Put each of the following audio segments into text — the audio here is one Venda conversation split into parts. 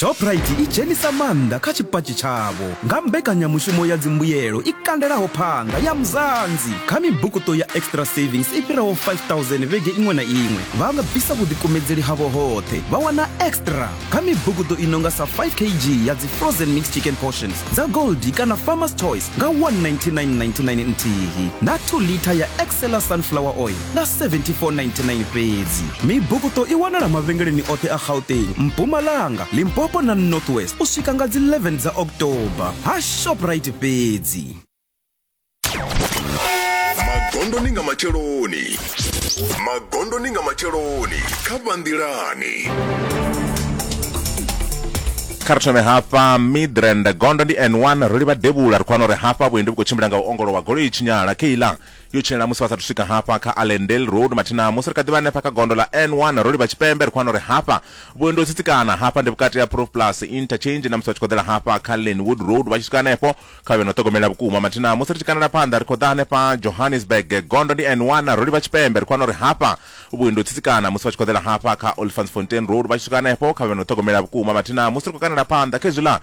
Shoprite i dzhenisa maanḓa kha tshipatshi tshavho nga mbekanyamushumo ya dzimbuyelo i kandelaho phanga ya Mzansi. Kha mibukuṱo ya Extra Savings i fhiraho 5000 vhege iṅwe na iṅwe, vha nga bvisa vhuḓikumedzeli havho hoṱhe vha wana extra kha mibukuṱo i nonga sa 5 kg ya dzi frozen mixed chicken portions dza Goldie kana Farmers Choice nga 199.99 nthihi na 2 litha ya Excella sunflower oil nga 7499 fhedzi mibukuṱo i wanala mavhengeleni oṱhe a gauteng mpumalanga limpopo na north west u swika nga dzi 11 dza october ha shoprite fhedzi magondoni nga matsheloni magondoni nga matsheloni kha vhanḓilani kha ri thome hafha midrand gondo ndi n1 ro livha devhula ri khou wana uri hafha vhuendi vhu khou tshimbila nga u ongolowa goloi i tshinyala keila yo tshinyala musi vha sathu swika hafha kha Allendale Road mathina musi ri kha ḓivha hanefha kha gondo ḽa N1 ro livha tshipembe ri khou wana uri hafha vhuendo tsitsikana hafha ndi vhukati ha Prof Plus interchange na musi vha tshi khou ḓela hafha kha Lenwood Road vha tshi swika hanefho kha vhe no ṱhogomela vhukuma mathina musi ri tshi kanela phanḓa ri khou ḓa hanefha Johannesburg gondo ndi N1 ro livha tshipembe ri khou wana uri hafha vhuendo tsitsikana musi vha tshi khou ḓela hafha kha Olifantsfontein Road vha tshi swika hanefho kha vhe no ṱhogomela vhukuma mathina musi ri khou kanela phanḓa khezwiḽa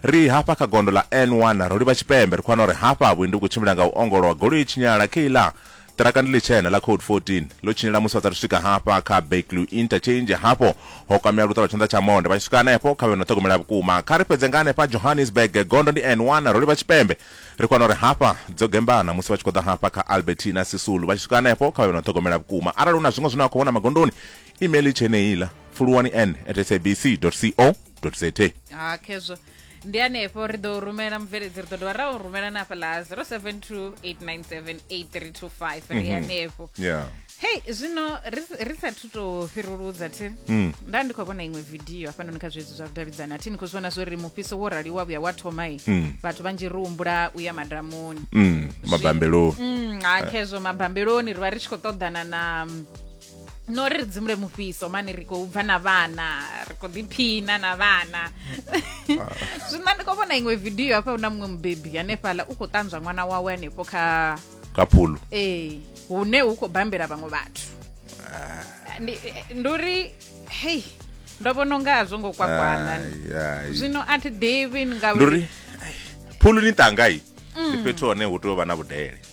Ri hafha kha gondo ḽa N1 ro livha tshipembe, ri khou wana uri hafha vhuendi vhu khou tshimbila nga u ongolowa, goloi i tshinyala, kheiḽa ṱiraka ndi ḽitshena ḽa code 14, ḽo tshinyala musi vha saathu swika hafha kha Bakerloo Interchange, hafho ho kwamea luṱa lwa tshanḓa tsha monde, vha tshi swika hanefho kha vhe no ṱhogomela vhukuma. Kha ri fhedze nga hanefha Johannesburg, gondo ndi N1 ro livha tshipembe, ri khou wana uri hafha dzo gembana musi vha tshi khou ḓa hafha kha Albertina Sisulu, vha tshi swika hanefho kha vhe no ṱhogomela vhukuma. Arali hu na zwiṅwe zwine wa khou vhona magondoni, email i tshe yeneiḽa, pfuluwani-n at sabc dot co. za ha khezwo ndi hanefho ri ḓo rumela mubveledzi ri ḓo dovha ra u rumela na hafha la 0728978325 ri mhm. hanefho yeah hei zwino ri sathu to fhiruludza thi mm. nda ndi khou vhona iṅwe vidio hafhanoni kha zwezwi zwa vhudavhidzani athi ni khou zwi vhona zwori mufhiso wo rali wa vhuya wa thoma i mm. vhathu vhanzhi ri humbula u ya madamuni mm, mabambeloni ha khezwo mabambeloni ri vha ri tshi khou ṱoḓana na no ri ri dzimule mufhiso mani ri khou bva na vhana ri khou ḓiphina na vhana ah. zwino ndi khou vhona iṅwe vidio hafha hu na muṅwe mubebi hanefhaḽa u khou ṱanzwa ṅwana wawe hanefho kha kha phulu ee hune hu khou bambela vhaṅwe vhathu ah. ndi uri hei ndo vhona unga a zwo ngo kwakwana zwino a thi ḓivhi ngauri phulu ni ṱangai ndi mm. fhethu hone hu tea u vha na vhudele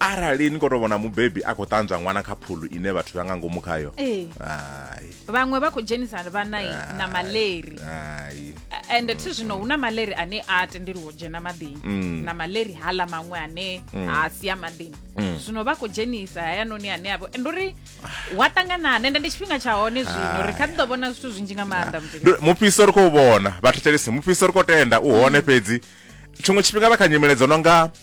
arali ni khou tou vhona mubebi a khou ṱanzwa ṅwana kha phulu ine vhathu vha nga ngomu khayo Ee. hai vhaṅwe vha khou dzhenisa vhanai na maleri hai and thi zwino hu na maleri ane a tendeliwa u dzhena maḓini Mm. na maleri haḽa maṅwe ane a sia maḓini Mm. zwino vha khou dzhenisa hayanoni ane avho and uri wa ṱangana nende ndi tshifhinga tsha hone zwino ri kha ḓi ḓo vhona zwithu zwinzhi nga maanḓa muvhili Ndo- mufhiso ri khou vhona vhathetshelesi mufhiso ri khou tenda u hone fhedzi tshiṅwe tshifhinga vha kha nyimele dzo no nga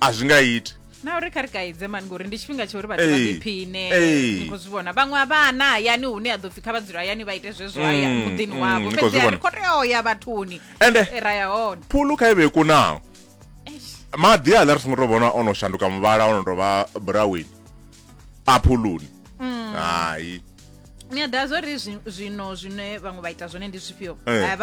a zwi nga iti na uri kha ri kaidze mani ngori ndi tshifhinga tsha uri vhathu vha Ee. ḓiphine Ee. ni khou zwi vhona vhaṅwe a vha na hayani hune a ḓo pfi kha vha dzule hayani vha ite zwezwo haya Mm, muḓini mm, wavho ni khou zwi fhedzi a ri vhona. khou tea o ya vhathuni Ende- Eh, ra ya hone phulu kha ivhe kunaho Eish. maḓi aḽa ri songo to vhona ono shanduka muvhala ono to vha buraweni aphuluni mm. hai ni a ḓa zwo ri zwino zwine vhaṅwe vha ita zwone ndi zwifhio eh.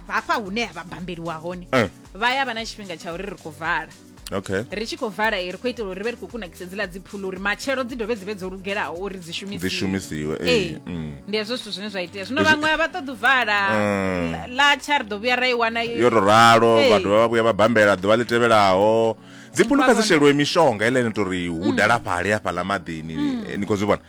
hafha hune ha vha bambeliwa hone eh. vha ya vha na tshifhinga tsha uri ri khou vala okay ri tshi khou vala ri khou itela uri vhe ri khou kunakisa dzila dziphulu uri matshelo dzi dovhe dzi vhe dzo lugelaho uri dzi shumisiwe eh, mm. ndi hezwo zwithu zwine zwa itea zwino vhaṅwe vha ṱoḓa u vala mm. ḽa tsha ri ḓo vhuya ra i wana yo ralo vhathu vha vhuya vha bambela ḓuvha ḽi tevhelaho dzi phuluka dzi sheliwe mishonga ile ni to ri hu mm. dala fhali hafha ḽa maḓini mm. eh, ni khou zwi vhona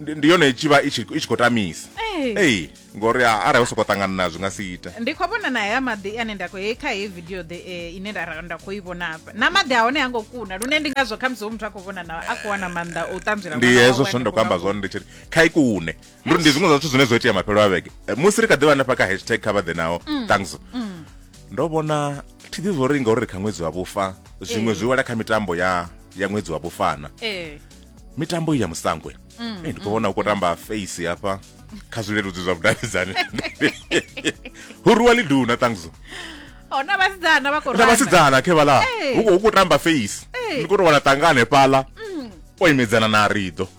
ndi yone i tshivha i tshi khou tamisa ei ngori arali u sokou ṱangana nazwo nga si ita ndi khou vhona na haya maḓi ane nda khou hei kha heyi video eh, ine nda khou i vhona hafha na maḓi a hone ha ngo kuna lune ndi ngazwo khamusi ho muthu a khou vhona na a khou wana maanḓa o ṱanzwela ndi hezwo zwine nda khou amba zwone ndi tshiri kha i kune ndi uri ndi zwiṅwe zwa zwithu zwine zwo itea mafhelo a vhege Eh, musi ri kha ḓivha hanefha kha hashtag kha vha ḓe naho thanks ndo vhona thi ḓi zwo ri ngauri ri kha ṅwedzi wa vhufa zwiṅwe zwi wela kha mitambo ya ya ṅwedzi wa vhufana ee mitambo i ya musangwe Eh, ndi khou vhona u khou tamba face hafha kha zwileludzi zwa vhudavhidzani hu ruwa liduna thanks o na vhasidzana vha khou na randa. vhasidzana khe vhala Hey. hu khou- hu khou tamba face Hey. ndi khou tou wana tangane fhala o imedzana na riḓo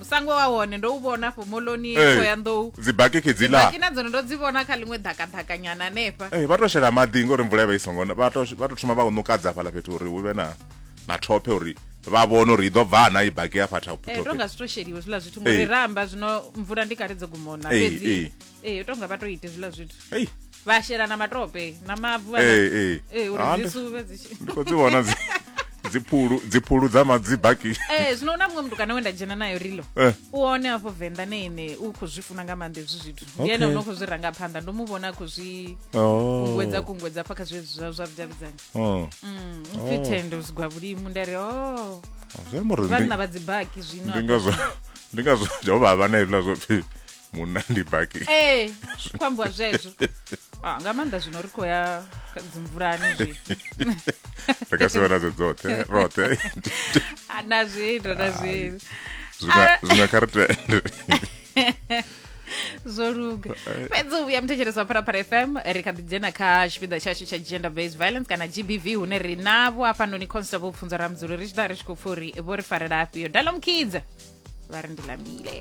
musangwe wa hone ndo u vhona afho moloni Ee. thoyandou dzibaki khe dzila baki na dzone ndo dzi vhona kha ḽiṅwe ḓakaḓakanyana hanefha Eh, vha to shela maḓi ngori mvula ivha i songo na- vha to vha to thoma vha u nukadza fhala fhethu uri hu vhe na na thophe uri vha vhone uri i ḓo bva na i baki ya fhatha Eh, tonga zwi to sheliwe zwiḽa zwithu Ee. ngori ramba zwino mvula ndi kale dzo gumona Ee, fhedzi ee. ee tonga vha to ite zwiḽa zwithu hei vha shela na matope na mavu vha- Ee, ee. ee, uri Ah, dzi ndi- suvhe dzi tshi- ndi khou dzi vhona dzi- dziphulu dziphulu dza madzibaki ee zwino u na muṅwe mutukana we nda dzhena nayo rilo Eh. u one afho venḓa na ene u khou zwi funa nga maanḓa hezwi zwithu ndi ene Okay. uno khou zwi ranga phanḓa ndo mu vhona a khou zwi Oh. kungwedza kungwedza pfa kha zwezwi zwa zwa vhudavhidzani Oh. upfi thendo zigwa vhulimu nda ri o Zwi amba uri ndi- vhanna vha dzibaki zwino ndi ngazwo ndi ngazwo zwo vhavha na hezwiḽa zwo pfhi munna ndi baki ee zwi khou ambiwa zwezwo Ah, nga maanḓa zwino ri khou ya kha dzimvulani zwi ri ka sivha nadzo dzoṱhe roṱhe Ah, na zwino na zwino Zwinga- zwinga kha ri tende zwo luga fhedzi u vhuya muthetshelesi wa pharapara fm ri kha ḓi dzhena kha tshipiḓa tshashu tsha gender based violence kana gbv hune ri navho hafhanoni constable pfunzo ramdzulu ri tshi ḓa ri tshi khou pfha uri vho ri farela afhio dalo mukidza vha ri ndilamile